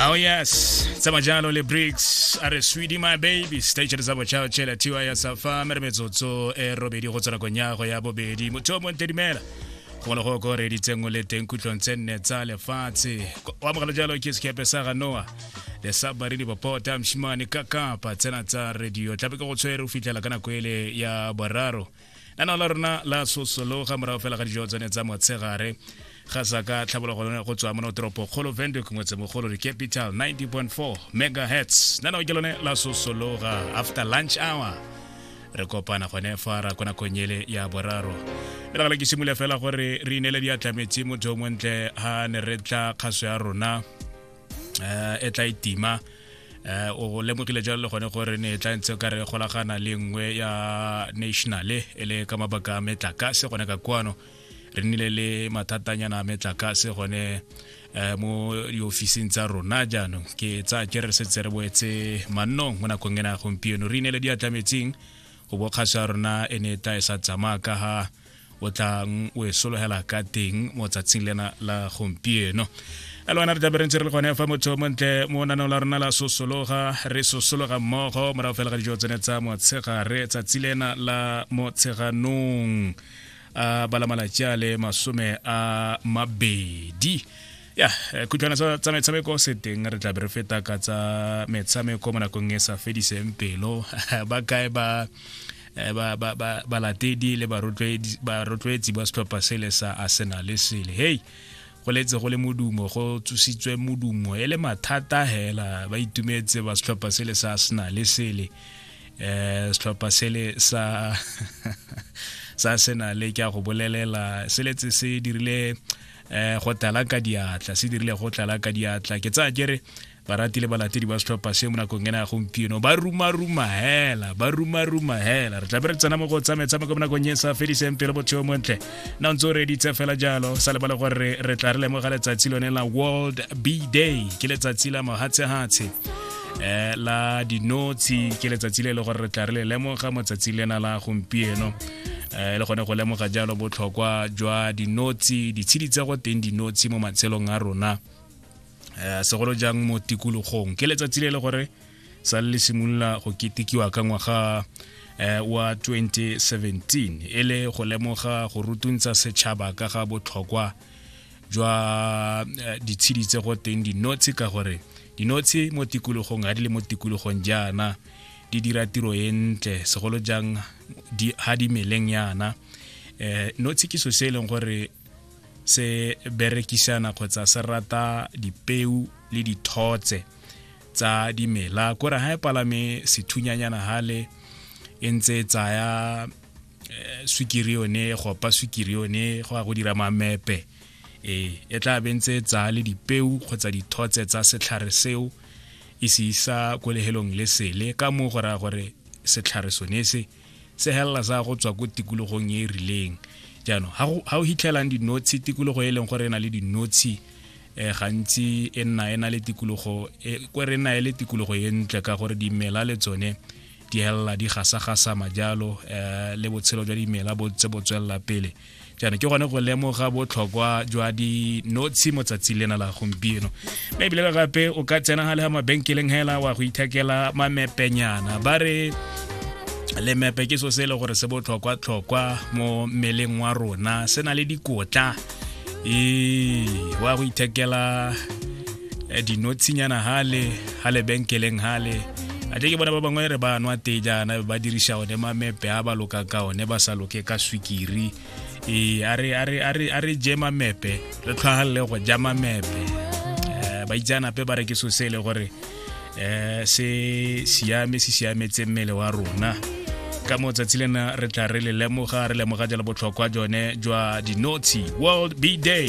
Oh yes, tsama jalo le Bricks a re sweetie my baby stage re tsabo chao chela tiwa ya safa mere metsotso e robedi go tsena konyago ya bobedi motho o monte dimela go le go go re di tsengwe le teng kutlong tse nne tsa lefatshe wa mogala jalo ke sekepe sa ga Noah le sa baridi bopota mshimane ka kapa tsena tsa radio tlabe ke go tshwere o fitlhela ka nako ele ya boraro lenao la rona la sosologa morago fela ga dijo tsone tsa motshegare ga sa ka tlhabologo lone go tswa mono toropo kgolo vendrick motsemogolo di capital 90.4 megahertz lenao ke lone la sosologa after lunch hour re kopana gone fa ra kona konyele ya boraro e legala ke simole fela gore re inele diatlametse motho o montle ga ne re tla kgaso ya rona um e tla itima e eh o lemogile jalo le gone gore ne e tla ntse ka re golagana le nngwe ya nationale e le ka mabaka a metlakase gone ka kwano re nnile le mathatanyana a metlakase gone um mo diofising tsa rona jaanong ke tsa ke re setse re boetse mannong mo nakong ena ya gompieno re inele diatlametseng go bokgaso ya rona e ne e tla e sa tsamaya ka ga o tlang o e sologela ka teng mo tsatsing lena la gompieno a le wena re tlabe re ntse re le gone fa motho montle mo nanong la rona la sosologa re sosologa mmogo morago fela ga dijo tsone tsa motshegare tsatsi lena la motsheganong a balamalatsi a le masome a mabedi ya khutlwana tsa metshameko se teng re tlabe re feta ka tsa metshameko mo nakong e sa fediseng pelo ba kae ba eh, balatedi ba, ba, ba le barotloetsi ba setlhopha sele sa arsenal sele hei go letse go le modumo go tsositswe modumo e le mathata hela ba itumetse ba setlhopha sele sa arsenal sele eh setlhopha sele sa sa arsenal ke a go bolelela se letse se dirile eh go tlala ka diatla se dirile go tlala ka diatla ke tsaya kere barati le balatedi ba setlhopha se mo nakong ena ya gompieno ba rumaruma hela ba rumaruma hela re tlabe re tsena mo go tsa metshameko mo nakong e sa fediseng pelo botsheo montle na ntse o reditse fela jalo sa lebale gore re tla re lemoga letsatsi lone la world b day ke letsatsi la mohatshehatshe eh la dinotshi ke letsatsi le e le gore re tla re le lemoga mo tsatsing lena la gompieno Eh, le gone go lemoga jalo botlhokwa jwa dinotsi ditshedi tsa go teng dinotsi mo matshelong a rona um segolo jang mo tikologong ke letsatsi le le gore sa le simolola go ketekiwa ka ngwaga eh, wa 2017 e le go lemoga go rutuntsha setšhaba ka ga botlhokwa jwa eh, ditshedi tse go teng dinotshi ka gore dinotshi mo tikologong ga di le mo tikologong jaana di dira tiro e ntle segolo jang ha di meleng yana um eh, notshi ke so se e leng gore se berekisana kgotsa se rata dipeu le dithotse tsa dimela kore ga e palame sethunyanyana gale e ntse e tsaya eh, swikiri yone go opa swikiri yone go ya go dira mamepe ee e tla be ntse e tsaya le dipeu kgotsa dithotse tsa setlhare seo e se isa ko lehelong le sele ka moo go raya gore setlhare sone se segelela sa go tswa ko tikologong e e rileng jaanong ga o hitlhelang dinotshe tikologo e leng gore e na le dinotshe um gantsi e nna e na le tikologo e, ko re nna e le tikologo e ntle ka gore dimela le tsone di helela di gasagasama jalo um le botshelo jwa dimela bo tse bo tswelela pele jaanong ke gone go lemoga botlhokwa jwa dinotshe mo tsatsi lena la gompieno mme ebile gape o ka tsena ga le ga mabenkeleng hela wa go ithekela mamepenyana ba re lemepe ke so se e le gore se botlhokwa-tlhokwa mo mmeleng wa rona se na le dikotla ee wa go ithekela eh, dinotshingana hale ha lebenkeleng hale a ke bona ba bangwe re ba nwa te jaana ba dirisa one mamepe a ba loka ka one ba sa loke ka swikiri ee a re je mamepe re tlhwagalele go ja mamepe eh, ba itseanape ba re ke so se e le gore um se siame se siametse mmele wa rona ka mo tsatsi lena re tla re le lemoga re lemoga jalo botlhokwa jone jwa dinotshi world b day